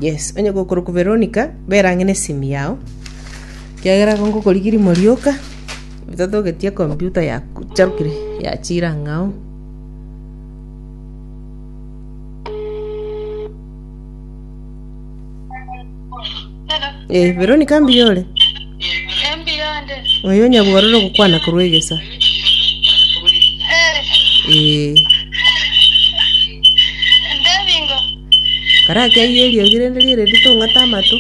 Yes, onye gokorokwa Veronica, bera ang'e nesimu yao, ekiagera igo ngokorigia rimo rioka, totogetie ekompyuta yacharokire yachira ang'ao. Eh, Veronica mbuya ore? Oyo nyabwororo gokwana korwa egesa. Eh. Kara ake ayie eriogi rende riere ritong'ata amato.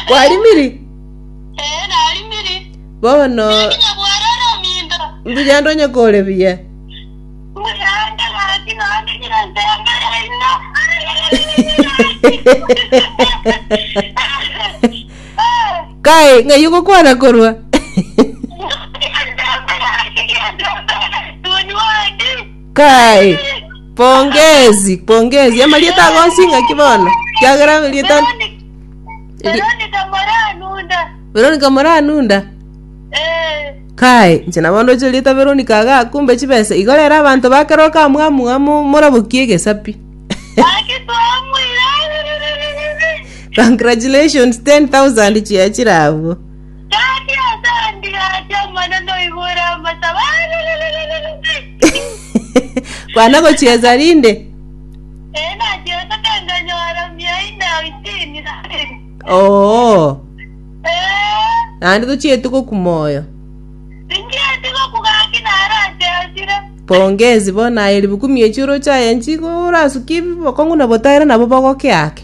Kwarimiri? Ee, narimiri. Bono Nakinya bwaroro ominto. mbuya ndonye kore buya. Muyande gaki nonde nyire nse y'amaya ino. Kai, ng'ai ogokwana korwa? Kai, pongezi, pongezi. Amarieta agosinga ki bono? Kiagera rieta Veronica Moranunda. veronica moranunda Eh. kai inche nabo ndoche rieta veronica iga kumbe chibesa igo rero abanto bakero kamwamuamo morabokie egesapi Aki twamwira. congratulations 10000 chia chire abwo Kaki asandi acha mana noigura amasaba. kwana gochiesa rinde Ee, nachiete kenganyora mia ime na isini na ibere. Oo, Ee, naende tochieti gokuma oyo. tinchieti gokuga ng'aki naro achesire. Pongezi bono aye ribuku miechi oroche aye nchigo orasukie bokong'u na botaera nabo bogoke ake.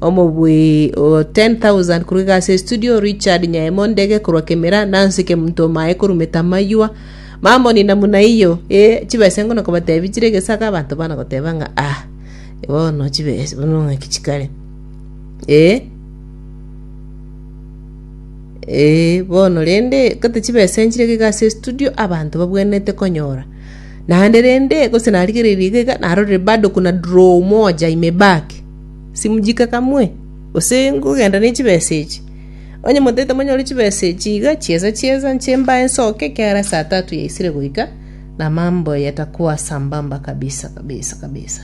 Omobui o 10,000 korwa igasi ya Estudio, Richard Nyaemo Ndege korwa Kemira, Nancy Kemunto Omae korwa Metamaywa, mamonina buna eyio, ee, chibesengo na kobatebi chire egesaga, abanto bana goteba ng'a ah, bono chibes bono ng'aki chikare. Ee, ee, bono rende gete chibesa nchire iga igasi ya Estudio, abanto babwenerete konyora. Naende rende, gose narigereiri iga iga, narorire bado kuna draw moja imebaki. Simujika kamwe, gose ngogenda ne chibesa echi? Onye motaete monyore chibesa echi iga, chiesa chiesa, inche mbae nsoke ekiagera esaa tatu yaisire goika, na mambo yatakuwa sambamba kabisa kabisa kabisa.